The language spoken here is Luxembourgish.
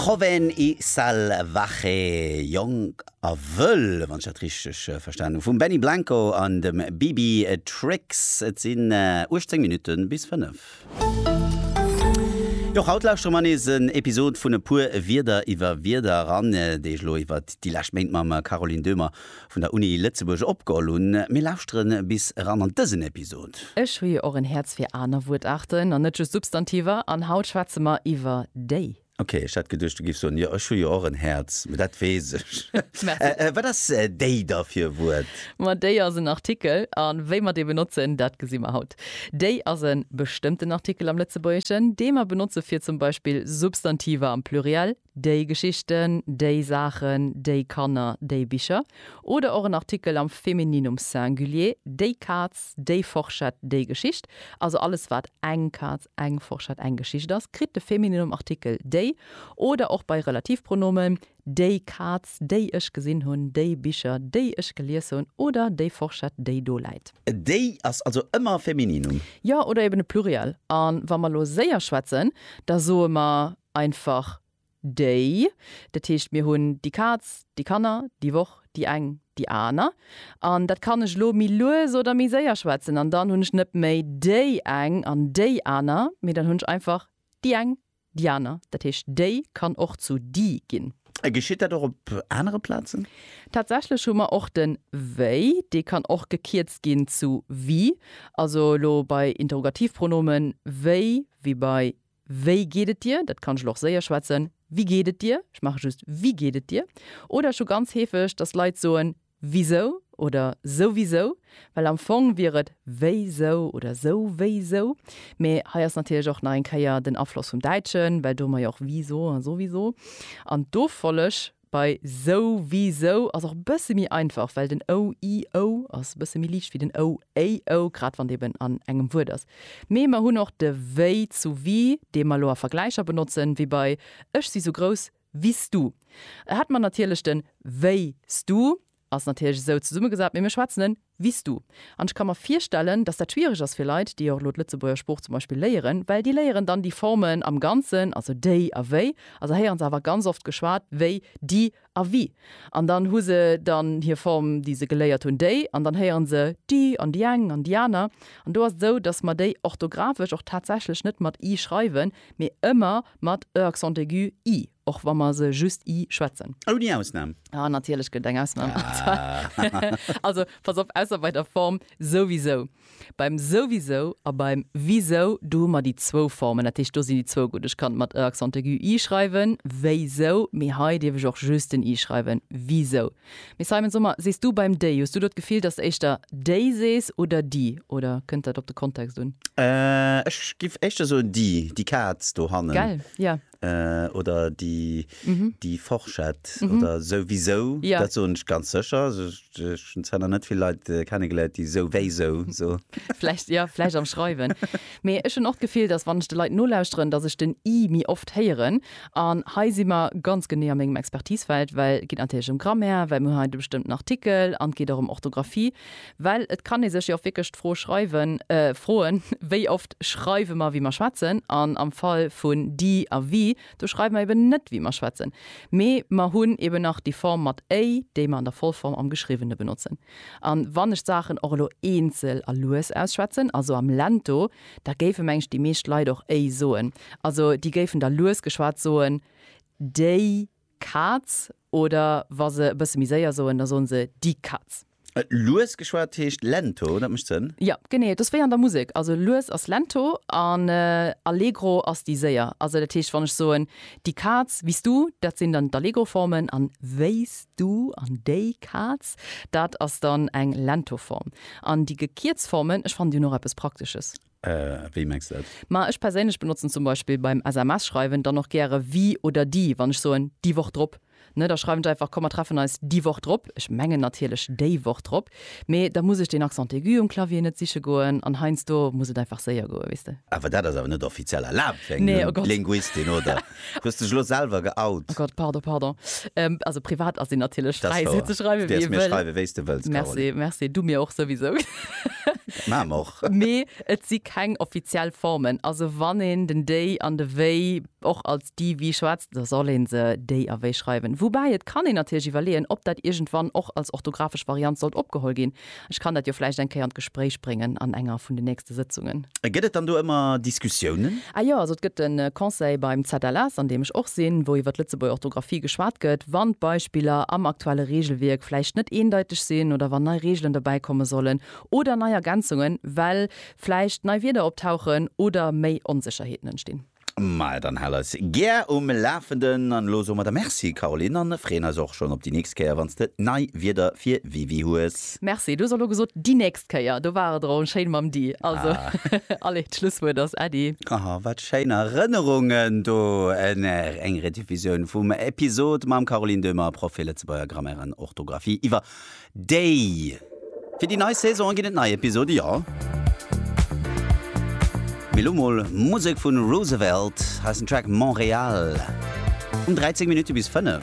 Joven y Salvaje, Jonk a Wëll, wann ech dat richteg verstanen hu vum Benny Blanco an dem Bibi Tricks. Et sinn 18 Minutte bis 5. Jo, haut lauschtere mer nees en Episod vun E puer Wierder iwwer Wierder eran, déi ech elo iwwer déi lescht Méint mam Caroline Döhmer vun der Uni Lëtzebuerg opgeholl hunn. Mir lauschteren bis eran an dësen Episod. Ech hu jo och en Häerz fir aner Wuertaarten an net just Substantiver, an haut schwätze mer iwwer déi. Ok, ech hat geduecht du giffs soen, jo ech hu jo och en Häerz, mee dat weess ech. Merci. Wat ass déi da fir e Wuert? Ma déi ass en Artikel, a wéi mer dee benotzen, dat gesi mer haut. Déi ass e bestëmmten Artikel am Lëtzebuergeschen, dee mer benotze fir zum Beispill Substantiver am Pluriel Déi Geschichten, déi Saachen, déi Kanner, déi Bicher. Oder och en Artikel am Femininum Singulier, déi Kaz, déi Forschett, déi Geschicht. Also alles wat eng Kaz, eng Forschett, eng Geschicht ass, kritt de Femininum Artikel déi. Oder och bei Relativpronomen, déi Kaz, déi ech gesinn hunn, déi Bicher, déi ech gelies hunn oder déi Forschett, déi do läit. Déi ass also ëmmer e Femininum. Jo, oder eben e Pluriel. A wa mer elo séier schwätzen, da soe mer. einfach déi. Dat heescht, mir hunn déi Kaz, déi Kanner, déi Woch, déi eng, déi aner. An dat kann ech elo méi lues oder méi séier schwätzen. An dann hunn ech net méi déi eng an déi aner, mee dann hunn ech einfach déi eng, déi aner. Dat heescht, déi kann och zu die ginn. A geschitt dat och op anere Plazen? Tatsächlech hu mer och de wéi. Dee kann och gekierzt ginn zu wie. Also elo bei Interrogativpronomen, wéi, wie bei Wéi geet et dir? Dat kann ech elo och séier schwätzen, Wie geht et dir? Ech maache just Wie geht et dir? Oder ech hu ganz heefeg, dass Leit soen Wisou? oder Souwisou? Well am Fong wier et Wéisou? oder Souwéisou? Mee hei ass natierlech och nach eng Kéier den Afloss vum Däitschen, well do hu mer jo och Wisou a Souwisou. An d'Offolleg Bei sou wéi sou ass och e bësse méi einfach, well den ou, i, ou ass e bësse méi liicht wéi den ou, éi, ou, grad wann d'eeben an engem Wuert ass. Mee mer hunn och de wéi zu wie, dee mer elo a Vergläicher benotzen, wéi bei Ech si sou grouss wéi s du. Et hätt mer natierlech den wéi s du Ass natierlech esou zesummegesat, mee mir schwätzen en wis du. An ech ka mer virstellen, datt dat schwiereg ass fir Leit, déi och elo d'Lëtzebuerger Sprooch zum Beispill léieren, well déi léieren dann déi Formen am Ganzen, also déi a wéi, a se héieren se awer ganz oft geschwat wéi di a wie. An dann hu se dann hir Form, déi se geléiert hunn, déi, an dann héieren se di an di eng an di aner. An do ass et esou, datt mer déi orthographesch och tatsächlech net mat i schreiwen, mee ëmmer mat e accent aigu, ii. Och wa mer se just i schwätzen. Ouni Ausnam. Ah, natierlech gëtt et eng Ausnam. Also, pass op, ausser bei der Form souwisou. Beim souwisou a beim wisou, do hu mer déi zwou Formen. Dat heescht, do sinn déi zwou gutt. Ech kann et mat e accent aigu i schreiwen, wéisou, mee hei dierf ech och just den i schreiwen, wisou. Mee Simon, so mer, sees du beim déi, hues du do d'Gefill, dass d'éischter déi sees oder di, oder kënnt dat op de Kontext un? Ech géif éischter soen di, di Kaz dohannen. Gell, jo. oder déi déi Forschett oder souwisou, dat soen ech ganz sécher. Ech hunn zwar nach net vill Leit kennegeléiert, déi souwéisou soen. Vläicht, jo, vläicht am Schreiwen. Mee ech hunn och d'Gefill, datt wann ech de Leit nolauschteren, datt ech den i méi oft héieren. An hei si mer ganz genee a mengem Expertisefeld, well et geet natierlech ëm Grammaire, well mir hunn hei de bestëmmten Artikel an et geet och ëm Orthografie. Well et kann ee sech jo och wierklech d'Fro schreiwen, froen, Wéi oft schreiwe mer, wéi mer schwätzen? An am Fall vun die a wie, do schreiwe mer eben net, wéi mer schwätzen, mee mer hunn eben nach déi Form mat éi, déi mer an der Vollform am Geschriwwene benotzen. A wann ech d'Saachen och elo eenzel a lues ausschwätzen, also am Lento, da géife meng ech déi meescht Leit och éi soen. Also déi géifen da lues geschwat soen, déi Kaz oder wa se e bësse méi séier soen, da soen se di Katz. Lues geschwat heescht lento, dat mécht Sënn. Jo, genee, et ass wéi an der Musek. Also lues ass lento an allegro ass déi séier. Also dat heescht, wann ech soen, di Kaz, wéi s du, dat sinn dann d'Allegro-Formen an wéi s du an déi Kaz, dat ass dann eng lento Form. An déi gekierzt Formen, ech fannen, déi hunn och eppes Praktesches. Wéi mengs de dat? Ma ech perséinlech benotzen zum Beispill beim SMS schreiwen dann och gäre wie oder die wann ech soen déi Woch drop, ne, da schreiwen ech einfach komm mer treffen eis déi Woch drop, ech mengen natierlech déi Woch drop, mee da muss ech deen Accent aigu um Clavier net siche goen an heiansdo muss et einfach séier goen, weess de. Awer dat ass awer net offiziell erlaabt fir eng Linguistin, oder? Hues dech lo selwer geout? Oh Gott, pardon, pardon. Ähm, also privat ass een natierlech fräi, sou ze schreiwen, wéi ee wëll. Du däerfs mir schreiwen, wéi s de wëlls, Caroline. Merci, merci. Du mir och souwisou. Maache mer och. Mee et si keng offiziell Formen. Also wann een den déi an de wéi och als di, wi schwätzt, da soll ee se déi a wéi schreiwen. Woubäi et kann een natierlech iwwerleeën, ob dat iergendwann och als orthografesch Variant sollt opgeholl ginn. Ech kann dat jo vläicht eng Kéier an d'Gespréich bréngen an enger vun den nächste Sëtzungen. A gëtt et dann do ëmmer Diskussiounen? Ah jo, also et gëtt e Conseil beim ZLS, an deem ech och sinn, wou iwwer d'Lëtzebuerger Orthografie geschwat gëtt, wann d'Beispiller am aktuelle Reegelwierk vläicht net eendeiteg sinn oder wann nei Reegelen dobäi komme sollen oder nei Ergänzungen, well vläicht nei Wierder optauchen oder méi Onsécherheeten entstinn. Maja, dann hal eis gär um Lafenden an elo soe mer der Merci Caroline an freeën eis och schonn op déi nächst Kéier wann s de nei Wierder fir WiWi hues. Merci, du hues och elo gesot déi nächst Kéier, do war et erëm schéin mam déi, also allez d'Schlusswuert ass Äddi. Oh wat schéin Erënnerungen do un eng Rediffusioun vum Episode mam Caroline Döhmer, Proff fir Lëtzebuerger Grammaire an Orthografie iwwer Déi! Fir déi nei Saison ginn et nei Episode, jo. Mee lo mol Musek vu Roosevelt, heissen Track Montréal um 13 Minutte bis 5.